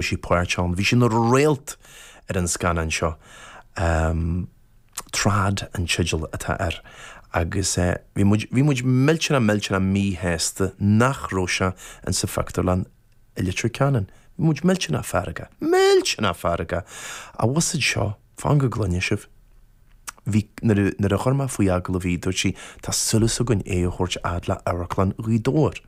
Bhí sí páirteach ann. Bhí sí ina réalt ar an scannán seo. Trad an teideal atá air agus bhí muid, bhí muid millteanach, millteanach míshásta nach raibh sé in sa phictiúrlann i Leitir Ceanainn. Bhí muid millteanach feargach, millteanach feargach! An bhfuil a fhios agat seo? Fan go gcluinfidh sibh. Bhí, nuair a chuir mé faoi agallamh í, dúirt sí, tá súil againn é a thabhairt fhad le Amharclann Ghaoth Dobhair.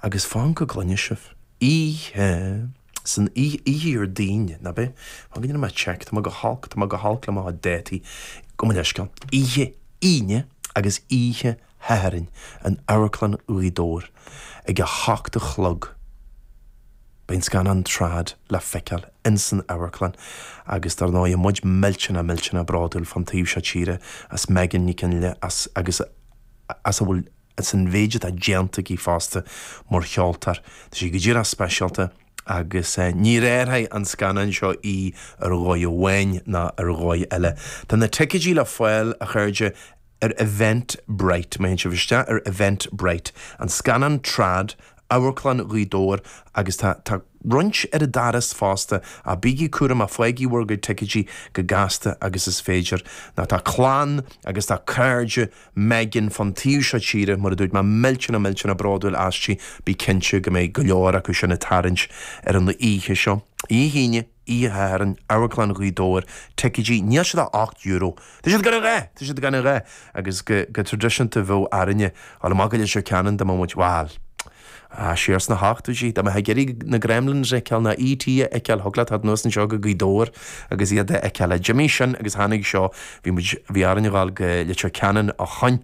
Agus fan go gcluinfidh sibh. Oíche san oíche Déardaoin, nab é. Fan go ndéanfaidh mé check, tá mé go holc, tá mé go holc le mo dhátaí. Gabh mo leithscéal. Oíche Aoine agus oíche Shathairn in Amharclann Ghaoth Dobhair ag a hocht a chlog. Beidh an scannán Trad le feiceáil insan amharclann agus dár ndóigh tá muid millteanach millteanach bródúil fán taobh seo tíre as Megan Nic Fhionnghaile agus as a bhfuil as an mhéid atá déanta aici fosta mar cheoltóir. Tá sí go díreach speisialta. agus ní léireoidh an scannán seo í ar dhóigh amháin ná ar dhóigh eile. Tá na ticéidí le fáil, a chairde, ar Eventbrite. Má théann sibh isteach ar Eventbrite, An Scannán Trad, Amharclann Ghaoth Dobhair, agus tá tá roinnt ar an doras fosta, ach bígí cúramach, faighigí bhur gcuid ticéidí chomh gasta agus is féidir, nó tá clann agus tá cairde Megan, fán taobh seo tíre, mar a dúirt mé, millteanach millteanach bródúil aisti, bí cinnte go mbeidh go leor acu sin ag tarraingt ar an oíche seo. Oíche hAoine, oíche Shathairn, Amharclann Ghaoth Dobhair, ticéidí, níl siad ach ocht euro! Tá siad gan a dhath! Tá siad gan a dhath! Agus go tradisiúnta bheadh orainne dul amach go Leitir Ceanainn dá mbeadh muid, bhal, Siar sna hochtóidí, dá mbeifeá ag iarraidh na Gremlins a fheiceáil ná E.T. a fheiceáil, thiocfadh leat teacht anuas anseo go Gaoth Dobhair agus iad a fheiceáil. Ach d'imigh sin, agus tháinig seo, bhí muid, bhí orainn a ghabháil go Leitir Ceanainn ó shin.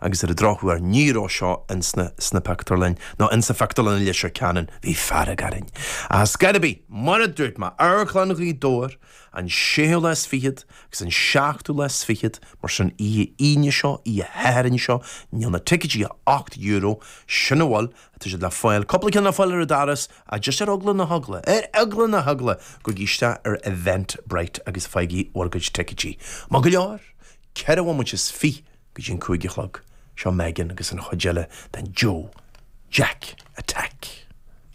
Agus ar an drochuair, ní raibh seo ins na, sna pictiúrlainn, nó insa phictiúrlann i Leitir Ceanainn. Bhí fearg orainn. Ach ar scor ar bith, mar a dúirt mé, Amharclann Ghaoth Dobhair, An séú lá is fichead agus an seachtú lá is fichead, mar sin, oíche Aoine seo, oíche Shathairn seo, níl na ticéidí ach ocht euro, sin a bhfuil, tá siad le fáil, cúpla ceann le fáil ar an doras, ach just ar eagla na heagla, ar eagla na heagla! Gabhaigí isteach ar Eventbrite agus faighigí bhur gcuid ticéidí. Maith go leor, ceithre bhomaite is fiche go dtí an cúig a chlog, seo Megan agus an chuid eile den Joe Jack Attack!